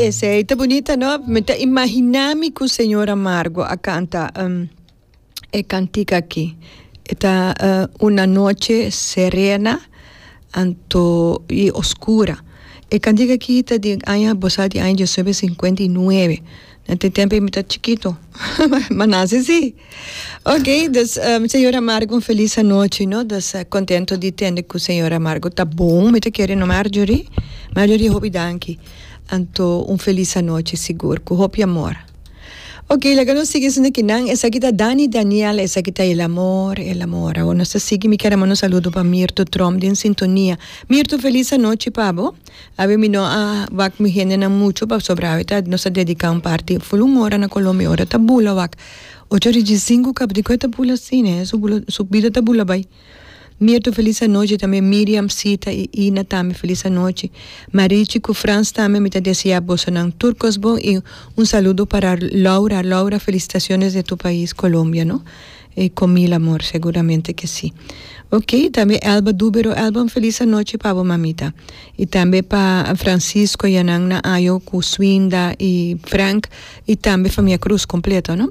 Esei ta bunita no mi ta imaginami cu señor Amargo a canta um, e cantica aki. E ta uh, una noche serena anto y oscura. E cantica aki ta di aña bosa di aña 1959. Na te tempo mi ta chiquito, ma nace si. Okay dus señor amargo un feliz anochi no dus contento di tende cu señor amargo ta bon mi ta kere no Marjorie Marjorie hopi danki anto un feliz anochi sigur cu hopi amor okay laga nos sigui esun aki nan esaki ta Danny Daniel esaki ta el amor el amor awo nos ta sigui mi kier a manda saludo pa Mirto Trump den sintonia Mirto feliz anochi pa bo. Awe mi no a wak mi hendenan mucho pasobra awe ta nos a dedica un parti full un ora na Colombia ora ta bula wak ocho ora dje cinco kaba di koe ta bula asi ne su bula su bida ta bula bai Mirto feliz anochi tambe Miriam Sita y Ina tambe feliz anochi Marichi cu Frans tambe mi ta desea bosonan tur cos bon y un saludo para Laura Laura felicitaciones de tu pais Colombia no E comila amor seguramente que si. Ok y tambe Elba Dubero Elba un feliz anochi pa bo mamita y tambe pa Francisco y anan na ayo cu Swinda y Frank y tambe famia Cruz completo no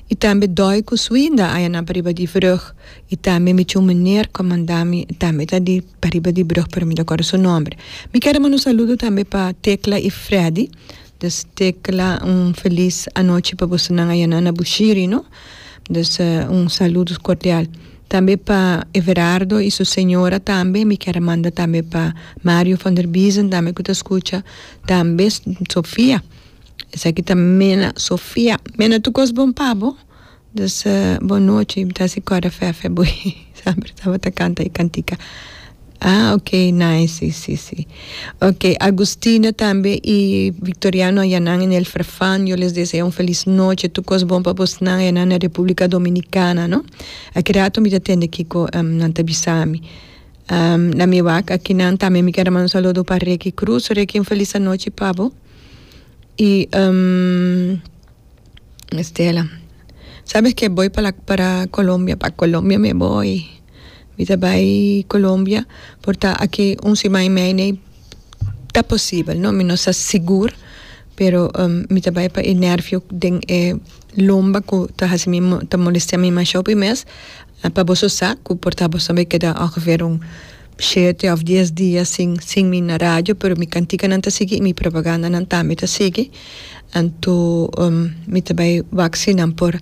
y tambe Doy cu Swinda aya nan pariba di brug y tambe mi chum meneer cu mandami tambe ta di pariba di brug pero mi ta acorda su nombre mi ker a manda un saludo tambe pa Tecla y Freddy dus Tecla un feliz anochi pa boso nan aya nan na Bushiri no. Dus un saludos cordial tambe pa Everardo y su señora tambe mi kier a manda tambe pa Mario van der Biesen tambe cu ta scucha tambe Sofia esaki ta mena Sofia mena tu cos bon pa bo dus bon nochi mi ta haci corda fefe bo. Saber tabata canta e cantica. Ah ok nice si si si ok Agustina tambe y Victoriano ayanan en el Farfan yo les deseo un feliz noche tur cos bon pa bosnan ayanan na Republica Dominicana no aki rato mi ta tende kico nan ta bisami na mi wak akinan tambe mi kier manda un saludo pa Reky Cruz Reky un feliz anochi pa bo y. Estela, Sabes ke boy para para Colombia, pa Colombia me boy, mi ta bai Colombia por ta aki un siman y medio ta posibel no, mi no sa sigur pero mi ta bai pa e nervio den e lomba ku ta hasi mi ta molestea mi masho pi mes La pa boso sa cu por ta boso me keda ongeveer un shete of dies dia sin sin mi na radio pero mi canticanan ta sigui y mi propagandanan tambe ta sigui anto mi ta bay wak si nan por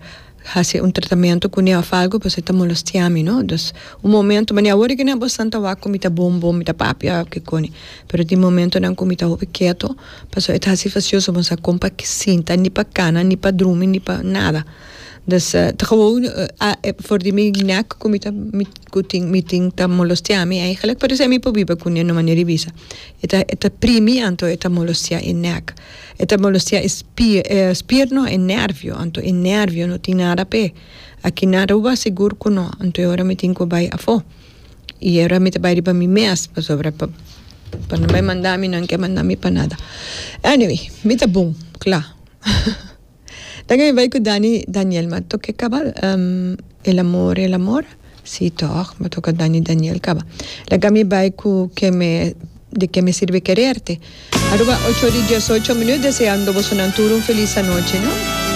haci un tratamento cune of algo pasobra ta molestia mi no dus un momento mane awor eken abo esnan ta wak cu mi ta bon bon mi ta papia of kicone pero tin momentonan cu mi ta hopi keto pasobra e ta haci facioso bo no sa con pa sinta ni pa cana ni pa drumi ni pa nada. Dus ta gewoon for di mi nek ku mi ta mi ku tin mi tin ta molostea mi ei gelijk parese mi por biba kune no manera di bisa e ta e ta primi anto e ta molostea e nek e ta molostea e spier e spier no e nervio anto e nervio no tin nada p'e a kina Aruba sigur ku no anto e ora mi tin ku bai afó i e ora mi ta bai riba mi mes pasobra pa pa no bai manda mi nan ke manda mi pa nada anyway mi ta bon kla. Dan e bai ku Dani Daniel ma toke kaba el amor el amor si tog ma toke Dani Daniel kaba laga mi bai ku ke me de ke me sirbe kererte Aruba ocho ori dies ocho minut deseando boso nan tur un felis anoche no.